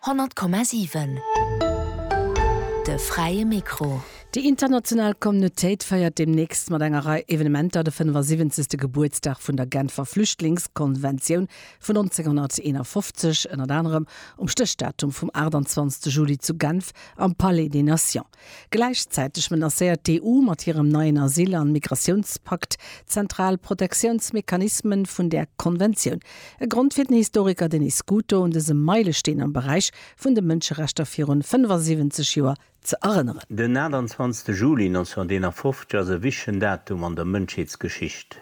100,7 De fräie Mikro. Déi international Communautéit feiert deemnächst mat enger Rei Evenementer de 75. Gebuertsdag vun der Genfer Flüchtlingskonventioun vun 1951, ënnert anerem um Stéchdatum vum 28 Juli zu Genf am Palais des Nations. Gläichzäiteg menacéiert d'EU mat hirem neien Asyl an Migratiounspakt d'zentral Protectiounsmechanismen vun där Konventioun. E Grond fir den Historiker Denis Scuto un dësem Meilesteen am Beräich vun de Mënscherechter virun 75 Joer ze erënneren. Den 28 Juli 1951 ass e wichtegen Datum an der Mënschheetsgeschicht.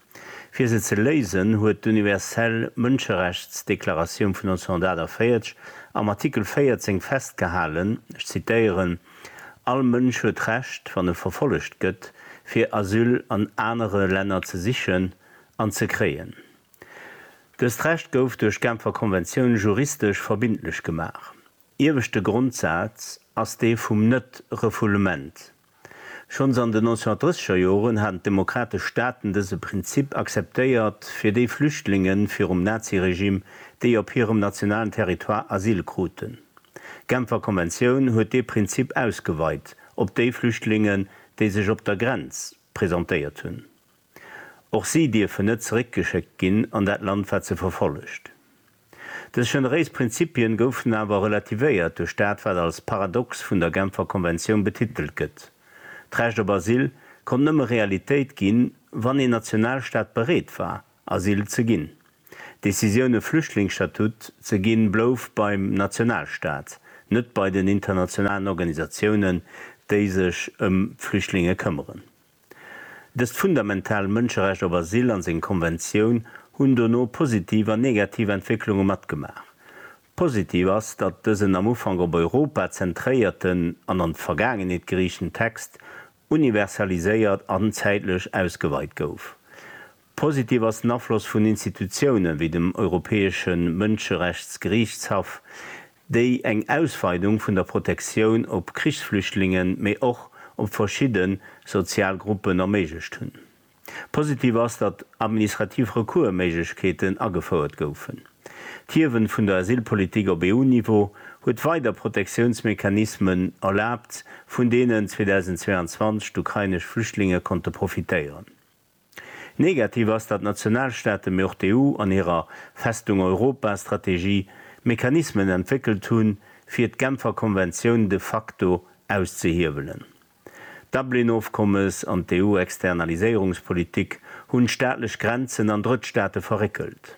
Fir se ze léisen, huet d'Universell Mënscherechtsdeklaratioun vun 1948 am Artikel 14 festgehalen, ech zitéieren, All Mënsch huet d'Recht, wann e verfollegt gëtt, fir Asyl an anere Länner ze sichen an ze kréien. Dëst Recht gouf duerch d'Genfer Konventioun juristesch verbindlech gemaach. Ieweschte Grondsaz ass dee vum Net-Refoulement. Schonns an den 1930er Joren haten d'demokratesch Staaten dëse Prinzip akzeptéiert fir déi Flüchtlinge virum Naziregimm, déi op hirem nationalen Territoire Asyl kruten. D'Genfer Konventioun huet dee Prinzip ausgeweit op déi Flüchtlingen, déi sech op der Grenz presentéiert hunn. Och si dierfen net zeréckgeschéckt ginn an dat Land, wat se verfollegt. Dës generéis Prinzipien goufen awer relativéiert duerch dat wat als Paradox vun der Genfer Konventioun betitelt gëtt, D'Recht op Asyl konnt nëmme Realitéit ginn, wann een Nationalstaat bereet war, Asyl ze ginn. D'Decisioun e Flüchtlingsstatut ze ginn blouf beim Nationalstaat, net bei den internationalen Organisatiounen, déi sech ëm d'Flüchtlinge këmmeren. Dëst fundamental Mënscherecht op Asyl an seng Konventioun hunn dono positiv an negativ Entwécklunge matgemaach. Positiv ass, datt dësen am Ufank op Europa zentréierten an an d'Vergaangenheet geriichten Text universaliséiert an zäitlech ausgeweit gouf. Positiv ass den Afloss vun Institutiounen, wéi dem Europäesche Mënscherechtsgeriichtshaff, déi eng Ausweidung vun der Protektioun op Krichsflüchtlingen, mee och op verschidde sozial Gruppen erméiglecht hunn. Positiv ass, datt administrativ Recours-Méiglechkeeten agefouert goufen. D'Hiewen vun der Asylpolitik op EU-Niveau huet weider Protektiounsmechanismen erlaabt, vun deenen 2022 d'ukrainesch Flüchtlinge konnte profitéieren. Negativ ass, datt d'Nationalstaaten, mee och d'EU an hirer Festung Europa Strategie Mechanismen entwéckelt hunn, fir d'Genfer Konventioun de facto auszehiewelen. D'Dublin-Ofkommes an d'EU-Externaliséierungspolitik hunn d'staatlech Grenzen an Drëttstaate verréckelt.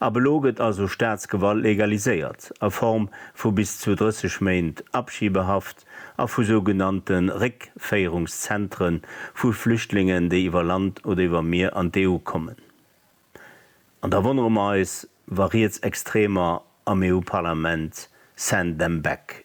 Ab elo gëtt also Staatsgewalt legaliséiert, a Form vu bis zu 30 Méint Abschiebehaft a vu sougenannte Réckféierungszentre vu Flüchtlingen, déi iwwer Land oder iwwer Mier an d'EU kommen. An da wonnere mer eis, wa Rietsextremer am EU-Parlament Send them back